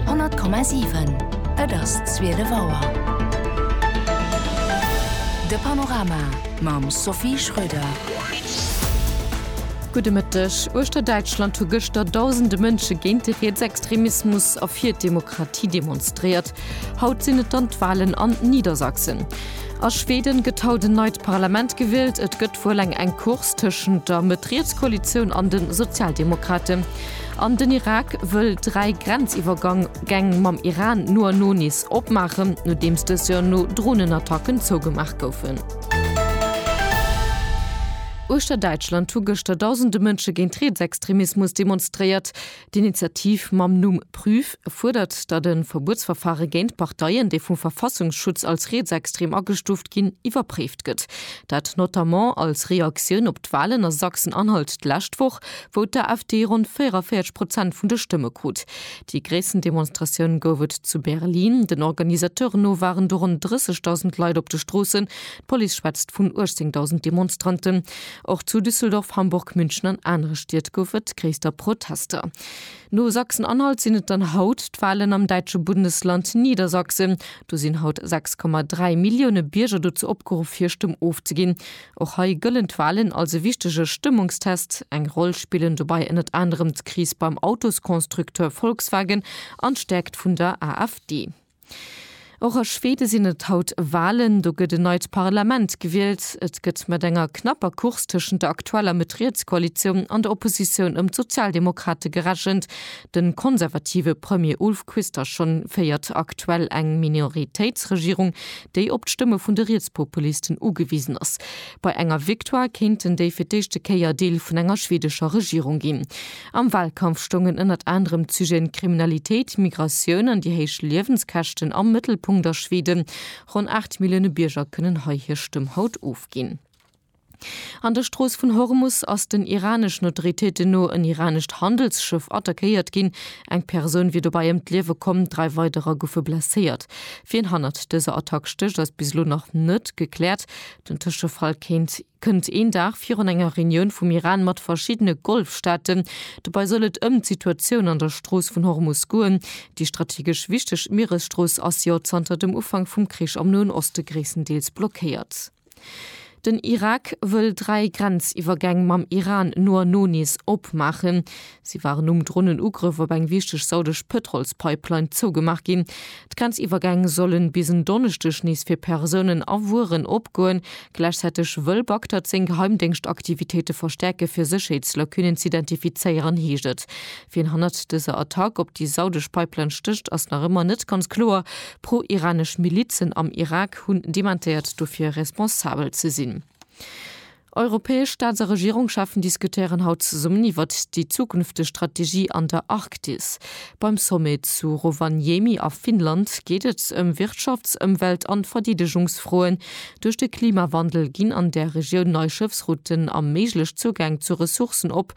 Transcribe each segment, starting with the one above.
100,7 Et ass 12 Auer. De Panorama mam Sophie Schröder. Gudde Mëtteg. Uechter Däitschland hu gëschter dausende Mënsche géint de Rietsextremismus a fir d'Demokratie demonstréiert. Haut sinn et dann d'Wahlen an Niedersachsen. A Schweden gëtt haut en neit Parlament gewielt. Et gëtt wuel eng enk Course tëschent der Mëtt-Riets-Koalitioun an de Sozialdemokraten. An den Irak wëll dräi Grenziwwergäng mam Iran no a no nees opmaachen, nodeems dës jo no Dronenattacken zougemaach goufen. Uechter Däitschland hu gëschter dausende Mënsche géint Rietsextremismus demonstréiert. D'Initiativ mam Numm Prüf fuerdert, datt e Verbuetsverfare géint Parteien, déi vum Verfassungsschutz als rietsextrem agestuuft ginn, iwwerpréift gëtt. Dat notamment als Reaktioun op d'Walen a Sachsen-Anhalt d'lescht Woch, wou d'AfD ronn 44 Prozent vun de Stëmme krut. Déi gréissten Demonstratioun gouf et zu Berlin. Den Organisateuren no waren do ronn 30.000 Leit op de Stroossen, d'Police schwätzt vun 18.000 Demonstranten. Och zu Düsseldorf, Hamburg, München an anere Stied gouf et gréisster Protester. No Sachsen-Anhalt sinn et dann haut d'Walen am däitsche Bundesland Niedersachsen. Do sinn haut 6,3 Millioune Bierger dozou opgeruff, hir Stëmm ofzeginn. Och hei gëllen d'Walen als e wichtege Stëmmungstest. Eng Roll spillen dobei ënnert anerem d'Kris beim Autoskonstrukteur Volkswagen an d'Stäerkt vun der AfD. Och a Schweden sinn et haut Walen. Do gëtt en neit Parlament gewielt. Et gëtt mat enger knapper Course tëschent der aktueller Mëtt-Riets-Koalitioun an der Oppositioun ëm d'Sozialdemokrate gerechent. De konservative Premier Ulf Kristersson féiert aktuell eng Minoritéitsregierung, déi op d'Stëmme vun de Rietspopulisten ugewisen ass. Bei enger Victoire kéinten déi fir d'éischte Kéier Deel vun enger schwedescher Regierung ginn. Am Walkampf stoungen ënnert anerem d'Sujeten Kriminalitéit, Migratioun an déi héich Liewenskäschten am Mëttelpunkt a Schweden. Ronn 8 Millioune Bierger kënnen hei hir Stëmm haut ofginn. An der Strooss vun Hormus ass den iraneschen Autoritéiten no en iranescht Handelsschëff attackéiert ginn. Eng Persoun wier dobäi ëm d'Liewe komm, dräi weiderer goufe blesséiert. Wien hannert dëser Attack stécht, ass bis elo nach net gekläert. Den Tëschefall kéint kënnt een Dag virun enger Reunioun vum Iran mat verschiddene Golfstaaten. Dobei soll et ëm d'Situatioun an der Strooss vun Hormus goen. Déi strategesch wichteg Mieresstrooss ass jo zanter dem Ufank vum Krich am Noen Oste gréisstendeels blockéiert. Den Irak wëll dräi Grenziwwergäng mam Iran no a no nees opmaachen. Si waren nom Dronenugrëff op eng wichteg saudesch Pëtrolspipeline zougemaach ginn. D'Grenziwwergäng solle bis en Donneschdeg nees fir Persounen a Wueren opgoen. Gläichzäiteg wëll Bagdad seng Geheimdéngscht-Aktivitéite verstäerke fir Sécherheetslaccunnen z'identifizéieren, heescht et. Wien hannert dëser Attack op déi saudesch Pipeline stécht, ass nach ëmmer net ganz kloer. Pro-iranesch Milizen am Irak hunn dementéiert dofir responsabel ze sinn. Europäesch Staats a Regierungscheffen diskutéieren haut zesummen iwwert déi zukünfteg Strategie an der Arktis. Beim Sommet zu Rovaniemi a Finnland geet et ëm Wirtschafts-, Ëmwelt an Verdeedegungsfroen. Duerch de Klimawandel ginn an där Regioun nei Schëffsrouten a méiglech Zougäng zu Ressourcen op,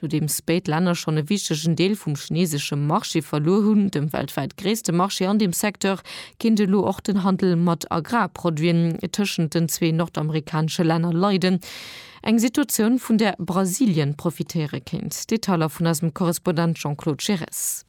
Nodeems béid Länner schonn e wichtegen Deel vum chineesesche Marché verluer hunn, dem weltwäit gréisste Marché an deem Secteur, kéint elo och den Handel mat Agrarproduiten tëschent den zwee nordamerikanesche Länner leiden. Eng Situatioun, vun där Brasilien profitéiere kéint. Detailer vun eisem Korrespondent Jean-Claude Giresse.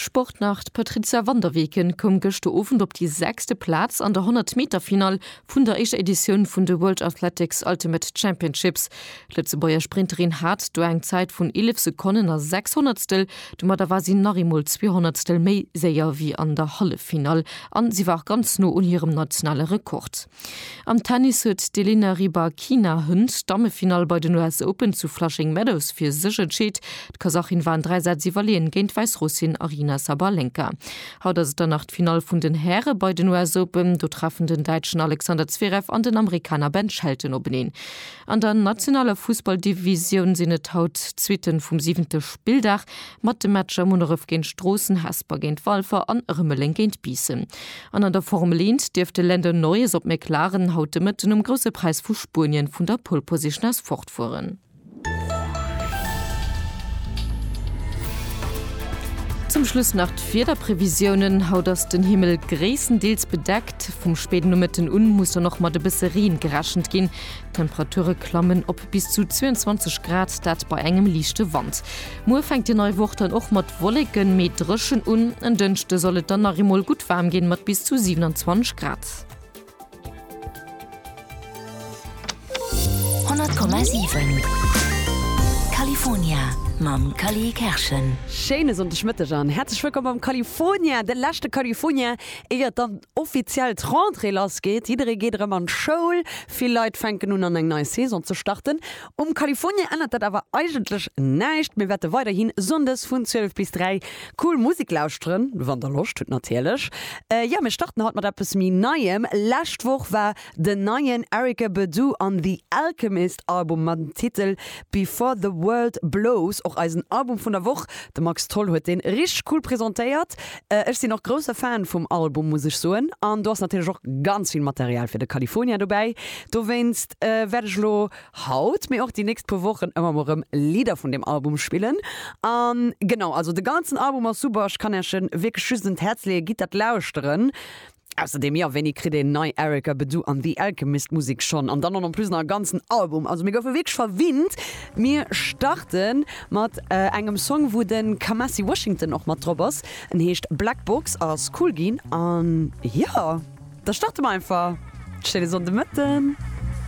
Sport nach, D'Patrizia van der Weken koum gëschter Owend op déi sechste Plaz an der 100 Meter Finall vun der éischter Editioun vun de World Athletics Ultimate Championships. D'Lëtzebuerger Sprinterin hat do eng Zäit vun 11 Sekonnen a 6 Honnertstel. Domadder war si nach eemol zwee Honnertstel méi séier wéi an der Halleffinall an si war och ganz no un hirem nationale Rekord. Am Tennis huet d'Elena Rybakina Hënt d'Dammefinall bei den US Open zu Flushing Meadows fir sech entscheet. D'Kasachin war an dräi Sätz iwwerleeën géint d'Wäissrussin Aryna Sabalenka. Haut ass et dann nach d'Finall vun den Häre bei den US Open. Do treffen den Däitschen Alexander Zverev an den Amerikaner Ben Shelton openeen. An der nationaler Fussballdivisioun sinn et haut d'Suitten vum siwente Spilldag mat de Matcher Munneref géint Stroossen, Hesper géint Walfer an Rëmeleng géint Biissen. An an der Formel Eent dierft de Lando Norris op McLaren haut de Mëtten um Grousse Präis vu Spuenien vun der Pole Position aus fortfueren. Zum Schluss nach d'Wiederprevisiounen, Haut ass den Himmel gréisstendeels bedeckt, vum spéiden Nomëtten un muss dann och mat e bësse Reen gerechent ginn. D'Temperature klammen op. Bis zu 22 Grad, dat bei engem liichte Wand. Muer fänkt déi nei Woch dann och mat Wolleken, mee dréchen un. En Dënschde soll et dann nach eemol gutt waarm ginn, mat bis zu 27 Grad. 100,7 California mam Cally Kerschen. Schéine Sonndegmëtteg an häerzlech wëllkomm beim California, de leschte California éier dann offiziell d'Rentrée lass geet. Jidderee geet erëm an d'Schoul, Vill Leit fänken un an eng nei Saison ze starten. Um California ännert dat awer eigentlech näischt. Mir wäerte weiderhi Sonndes vun 12 bis 3 cool Musek lauschteren, wann der Loscht hutt natierlech. Jo, mir starten haut mat eppes méi Neiem. Lescht Woch war den neien Erykah Badu an The Alchemist Album mam Titel Before the World Blows och eisen Album vun der Woch. De Max Tholl huet deen richteg cool presentéiert. Ech sinn och grousse Fan vum Album muss ech soen an do ass natierlech och ganz vill Material fir de California dobäi. Dowéinst wäert ech elo haut, mee och déi nächst puer Wochen ëmmer mol rëm Lidder vun deem Album spillen. An genau, also de ganzen Album ass super, ech kann Äerch en wierklech just un d'Häerz leeën, gitt dat lauschteren. Ausserdeem, jo, wéini kritt een nei Erykah Badu an The Alchemist Musek schonn? An dann och en plus nach e ganzen Album. Also mir goufe wierklech verwinnt. Mir starte mat engem Song, wou de Kamasi Washington och mat drop ass. En heescht Black Box, ass cool ginn. An jo, da starte mer einfach. Schéine Sonnde Mëtten.